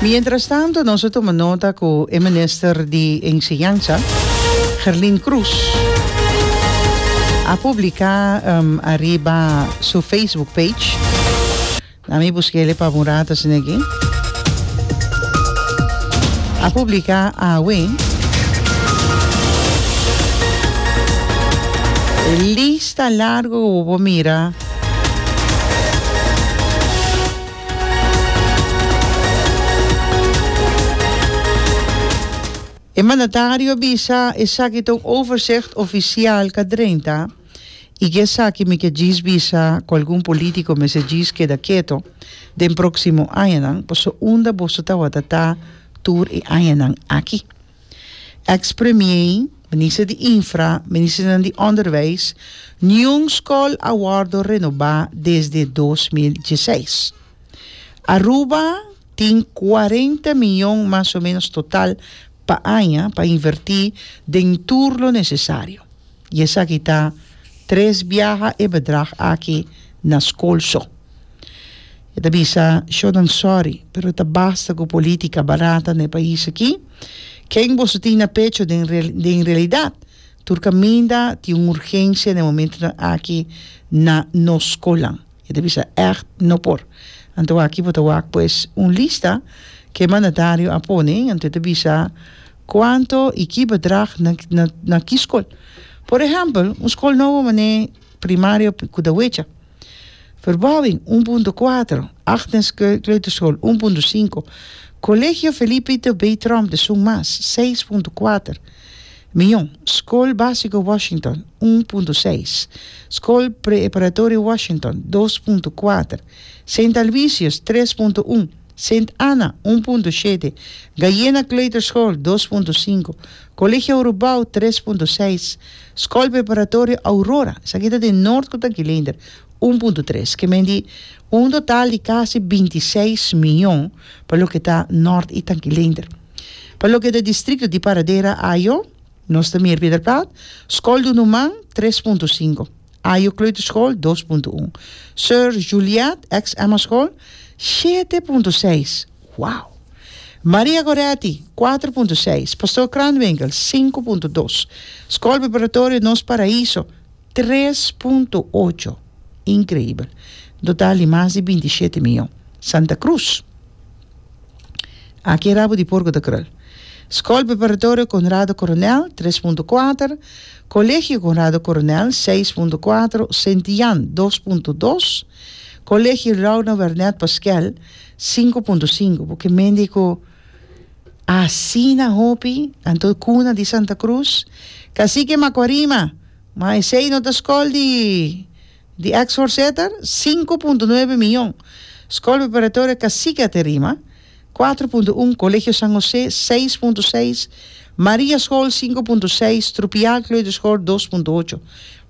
Mientras tanto nos a tuma nota cu e Minister di Enseñansa, Gerlin Croes, a publica ariba su Facebook page, na mi busquele pa un rato asina aki, a publica awe e lista largo cu bo por mira. E mandatario bisa esaki ta un overzicht ofisial ka drenta i ke esaki mi ke djis bisa ku algun politiko mester djis keda keto den proksimo añanan, pasobra unda boso tabata ta tur e añanan aki. Ex premier, minister di infra, ministernan di onderwijs, niun skol a wòrdu renobá desde dos mil dieseis. Aruba tin kuarenta mion mas o menos total pa aña pa invertí den tur lo nesesario. Y esaki ta tres biaha e bedrag aki na school so. E ta bisa, Sho nan sorry, pero ta basta cu politica barata na e pais aki. Ken boso tin na pecho den den realidad tur caminda tin un urgencia na e momentonan aki na nos schoolnan? E ta bisa, Echt no por. Anto aki bo ta wak pues un lista cu e mandatario a pone, anto e ta bisa, Kuantu i ki bedrag na ki skol? Por ehèmpel, un skol nobo manera e primario ku ta wecha. Verbouwing, un punto kuater. Agnes Kleuterschool, un punto sinku. Colegio Felipe Ito B. Tromp di Sung Mas, seis punto kuater mion. Skol Básiko Washington, un punto seis. Skol Preeparatorio Washington, dos punto kuater. Sint Alvisius, tres punto un. Sint Anna, un punto shete, Gaiena Kleuterschool, dos punto sinku, Colegio Urubau, tres punto seis, Skol Preparatorio Aurora, esaki ta den Noord ku ta Gilender, un punto tres. Ke men di un total di kasi binti i seis mion pa loke ta Noord i ta Gilender. Pa loke ta distrikto di Paradera, Ajo, nos ta Meer Pieterpelt, Skol Dunumang, tres punto sinku. Ajo Kleuterschool, dos punto un. Sir Juliet, ex Emma School, shete punto seis. Wow! Maria Goretti, kuater punto seis. Pastoor Kranwinkel, sinku punto dos. School Preparatorio Nos Paraíso, tres punto ocho. Increíbel! Un total di mas di binti shete miyon. Santa Cruz. Aki e rabu di porku ta krul. Skol Preparatorio Konrado Koronèl, tres punto kuater, Kolegio Konrado Koronèl, seis punto kuater, Sint Jan, dos punto dos, Kolegio Rouno Wernèt Paskèl, sinku punto sinku. Por ke mende ku asina hopi anto e kuna di Santa Krus, Kasiki Makuarima, ma esei no ta skol di. Di ex forseter, sinku punto nuebe miyon, Skol Preparatorio Cacique Aterima, kuater punto un, Kolegio San Hosé, seis punto seis, Maria Skol, sinku punto seis, Trupial Kleuterskol, dos punto ocho.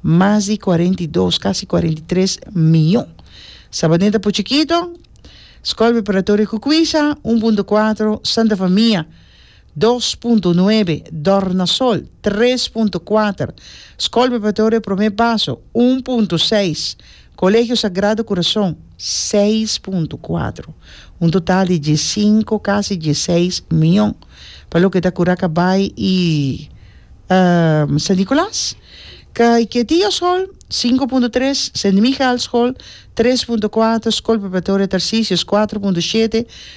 Mas di kuarenta i dos, kasi kuarenta i tres miyon. Sabaneta Puchikito, Skol Preparatorio Cucuisa, un punto kuater, Santa Famia, dos punto nuebe Dornasol tres punto kuater Skol Preparatorio Prome Baso un punto seis Kolegio Sagrado Kurason seis punto kuater un total di diesinko kasi dieseis mion pa loke ta Kuraca Bay i San Nicolas Kaique Dia Skol sinku punto tres Sint Michael Skol tres punto kuater Skol Preparatorio Tarcisius kuater punto shete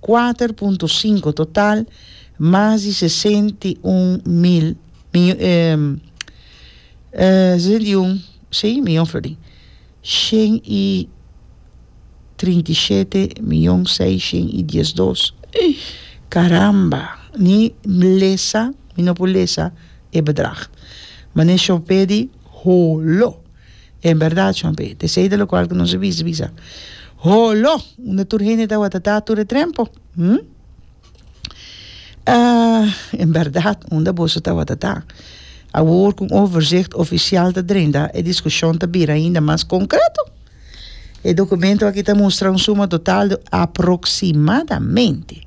Kuater punto sinku total, mas di sesenta i un mil, sesenta i un, si, miyon florin. Shen i trinta i shete miyon seishen i diesdos. Karamba! Ni lesa mi no por lesa e bedrag. Mane Shopedi, Holo! En berdad, Juan P. T. Sey de lo cual cu nos a bisa, bisa, Holo! Unda tur hende tawata ta tur e trempo? Hm? Ah, en berdad, unda boso tawata ta? Awor cu un overzicht oficial ta drenta, e discusion ta bira ainda mas concreto. E documento aki ta mustra un suma total de aproximadamente.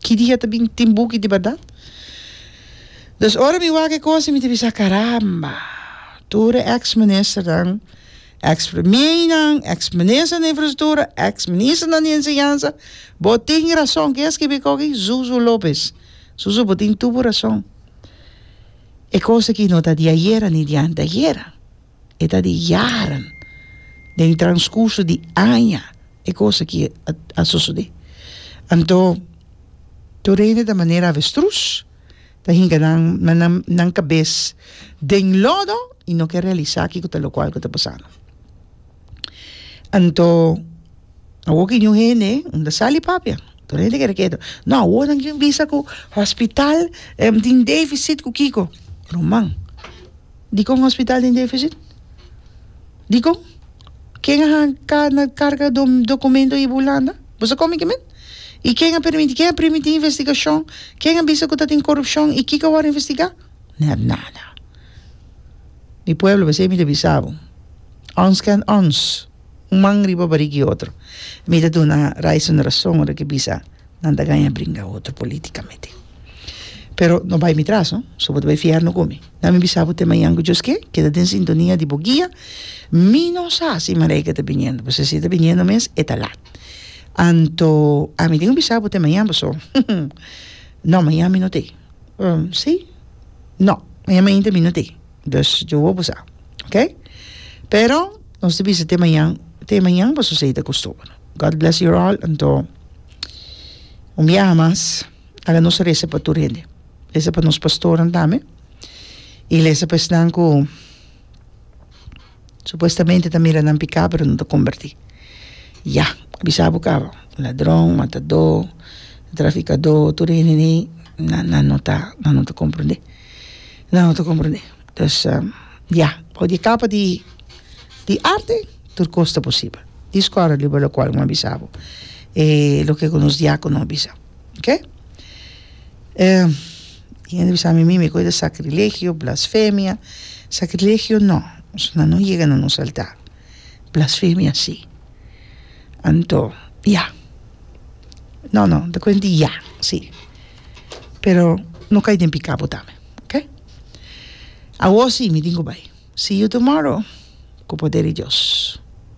Ki dia ta bin tin buki di bardad? Dus ora mi wak e cosa mi ta bisa, caramba, tur e ex ministernan, ex premieinan, ex minister di infrastructura, ex ministernan di enseñansa, bo tin rason ken a skibi eko aki? Zuzu Lopez, zuzu bo tin tur bo rason, e cosa aki no ta di ayera ni di anteayera. e ta di jaren, den transcurso di aña e cos aki a sosode. Anto tur hende ta manera avestruz, ta hinca nan nan nan cabes den lodo y no ke realisa kico ta locual cu ta pasando. Anto awo ki ñu hende un ta sali papia, tur hende kere keto, no awo nan tin bisa cu hospital tin deficit cu kico, ruman. Dikon un hospital tin deficit? Dikon? Ken a hanka na carga documento iba Hulanda? Boso con mi kimen? Y ken a permiti? Ken a primiti investigacion? Ken a bisa cu ta tin corupcion y kiko a word investiga? Net nada. Mi pueblo, besey mi ta bisa bo. Ons ken ons. un man riba barik di otro mi ta duna rais un rason ora ke bisa nan ta gaña bringa otro politikamente pero no bai mi tras no so bo ta bai fiar no kumi nan mi bisa bo te mañan ku Dios ke keda den sintonia di bo guia mi no sa si Malaika ta biniendo pasobra si e ta biniendo mes e ta lat anto ami tin ku bisa bo te mañan paso no mañan mi no ta ei si no mañan mainta mi no ta ei. Dus yo hopi sa ok pero nos ta bisa te mañan te mañan boso a seita ku stoba no God bless your all anto un biaha mas ala nos a resa pa tur hende resa pa nos pastornan tambe y resa pa esnan ku Supuestamente ta mira nan piká pero no ta kombertí ya bisa bo kaba ladron matadó trafikadó tur e hende nan nan no ta nan no ta komprendé nan no ta komprendé pues ya for di kapa di di arte tur kos ta posibel di skòla di bo lokual bo a bisa bo e loke ku nos diakono a bisa oke. E hende bisa mi, mi koe ta sakrilegio, blasfemia, sakrilegio no, esuna no yega na nos altar, blasfemia si, anto ya, no no ta kuent di ya si, pero no kai den pika bo tambe ok, awo si mi tin ku bai, see you tomorrow ku poder di dios.